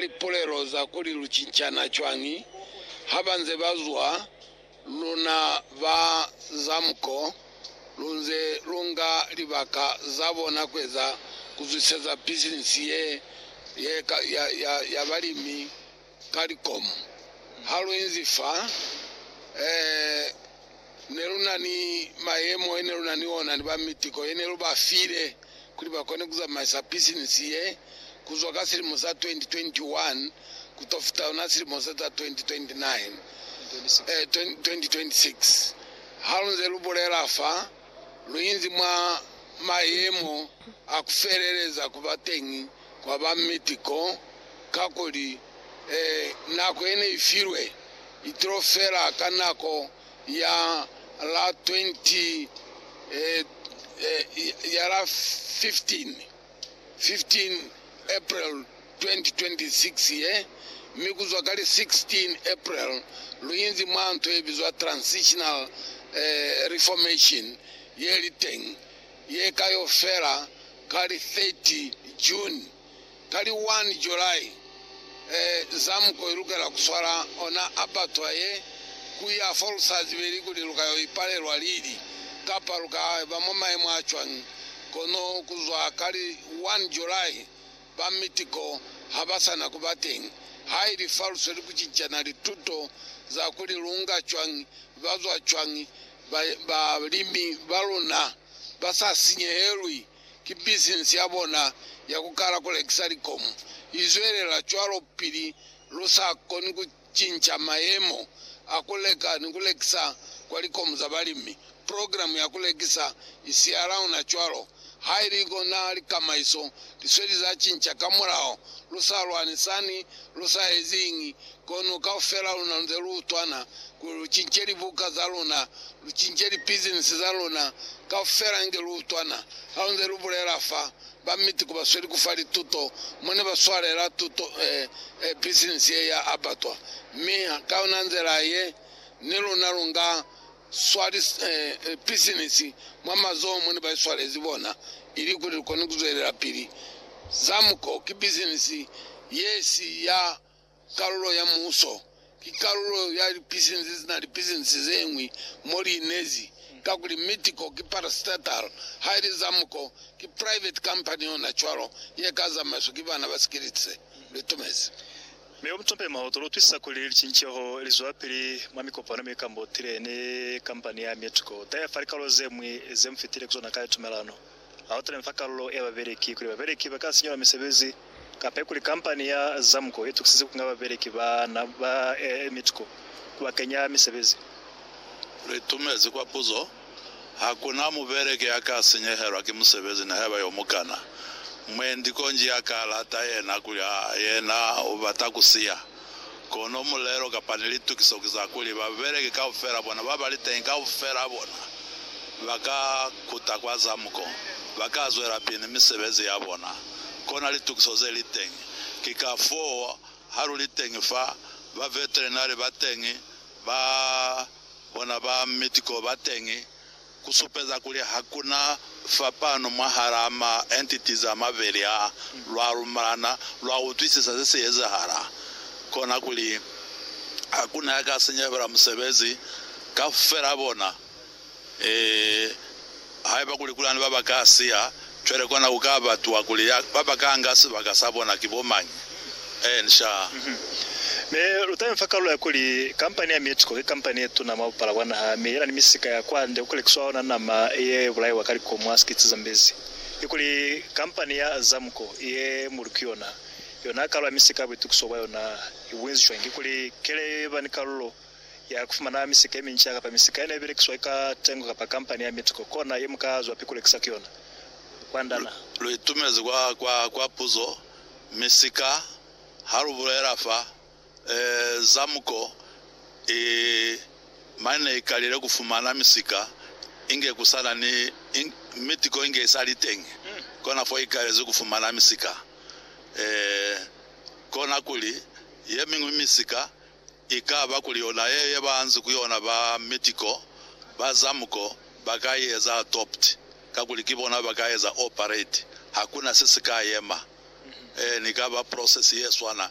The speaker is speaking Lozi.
lipulelo za kuli lu cincana cwañi ha ba nze ba zwa, luna ba za muko lu nze lu nga libaka za bona kueza ku zwiseza bisinisi ye ye ya balimi ka likomo. Ha lu inzi fa, eh, Ne lu na ni mayemo ye ne lu na ni ona ni ba mitiko ye ne lu ba file kuli ba kone ku zamaisa pisinisi ye ku zwa ka silimo sa 2021 ku to fita ona silimo se za 2026. Ha lu nze lu bulela fa, lu inzi mwa mayemo a ku feleleza ku ba teñi kwa ba miti ko, kakuli, ee, nako ye ne i filwe i tilo fela ka nako ya la 20, ee, ya la 15, 15 April 2026 ye, mi ku zwa ka li 16 April lu inzi mwa nto ye bizwa transitional, ee, reformation ye li teñi. ye ka yo fela ka li 30 June. Ka li 1 July, Zamuko i lukela ku swala ona aperture ye, ku ya fo lu sa zibeli kuli lu ka yo ipalelwa lili, kapa lu ka ba mwa mayemo a cwañi. Kono ku zwa ka li 1 July, ba mitiko ha ba sa na ku ba teñi. Ha ili fa lu sweli ku cincana lituto za kuli lu nga cwañi, ba zwa cwañi, balimi ba luna ba sa sinyehelwi ki bisinisi ya bona ya ku kala ku lekisa likomu i zwelela cwalo pili lu sa koni ku cinca mayemo a ku leka ni ku lekisa kwa likomu za balimi. Programe ya ku lekisa i siya launa cwalo Ha ili ko na likamaiso li sweli za cinca ka mulao, lu sa lwani sani, lu sa ezi iñi, kono kaufela luna lunze lu utwana, kuli lu cince libuka za luna, lu cince lipizinisi za luna, kaufela inge lu utwana. Halunze lu bulela fa, ba miti ku ba sweli ku fa lituto, mo ne ba swalela tuto, eh, eh, pizinisi ye ya abatwa. Mi ka yona nzela ye, ni luna lu nga swali pisinisi mwa mazoho mo ne ba i swalezi bona ilikuli li kone ku zwelelapili. Zamco ki pisinisi ye si ya kalulo ya muuso. Ki kalulo ya lipisinisi ze na li pisinisi ze ñwi mo li inezi, kakuli Mitco ki parastatal, haili Zamco ki private company yona cwalo ye ka zamaiswa ki bana ba Skilitse. Li tumezi. Mi yo mutope mwa hoto lutwisisa kuli licinceho lizwapili mwa mikopano mi kambo tile ni kampani ya Mitco tire fa likalolo zemwi ze mufitile kuzona kale tumelano ha otile fa kalulo ya babeleki kuli babeleki baka sinyelwa misebezi kapa kuli kampani ya Zamco itukisize kunga babeleki ba Mitco kubakenya misebezi. Litumezi kwa puzo. Hakuna mubeleki ya ka sinyehelwa ki musebezi nihaiba yo mukana. Mwendi konji ya ka lata yena kuli a yena u bata ku siya. Kono mulelo kapa ni litukiso ki za kuli babeleki kaufela bona ba ba li teñi kaufela bona ba ka kuta kwa zamuko, ba ka zwelapili ni misebezi ya bona. Kona litukiso ze li teñi. Ki kafoo ha lu li teñi fa, ba veterinari ba teñi ba Bona ba Medical bateñi ku supeza kuli ha ku na fapano mwahalaa ma entity za mabeli aa. Lwa lumelana, lwa utwisisa se si ezahala, kona kuli ha ku na ya ka sinyehela musebezi kaufela bona. Ee, Haiba kuli kulani ba ba ka siya cwale, kona ku ka batwa kuli ya ba ba ka nga sibaka sa bona ki bo mañi? Ee, nxaa. Mi lu ta infa kalulo ya kuli, Kampani ya Mexico ki kampani ye tuna mwa bupala bwa naha, mi yena ni misika ya kwande ku lekiswa ona nama ye bulaiwa ka likomo ha sikiti za mbezi. Kikuli kampani ya Azamco ye mulu ki yona, yona kalo ya misika ya buitukiso bwa yona i bunzi cwañi? Kikuli keleyo ye ba ni kalulo? ya ku fumana misika ye minca kapa misika ye ne belekiswa ka tengo kapa kampani ya Mitco kona ye mu ka zwapi ku lekisa ku yona kwa ndana. Lu itumezi kwa, kwa, kwa puzo, misika, ha lu bulela fa, e, za muko i, mane ne i kalile ku fumana misika, inge ku sa na ni, i, Mitco inge i sa li teñi. Kona fo i kalezi ku fumana misika. E, kona kuli, ye miñwi misika, I ka ba kuli yona ye ye ba nzi ku yona ba Medical, ba Zamco ba ka i eza adopt kakuli ki bona ba ka eza operate. Hakuna se si ka yema. Eeni, i ka ba process ye swana.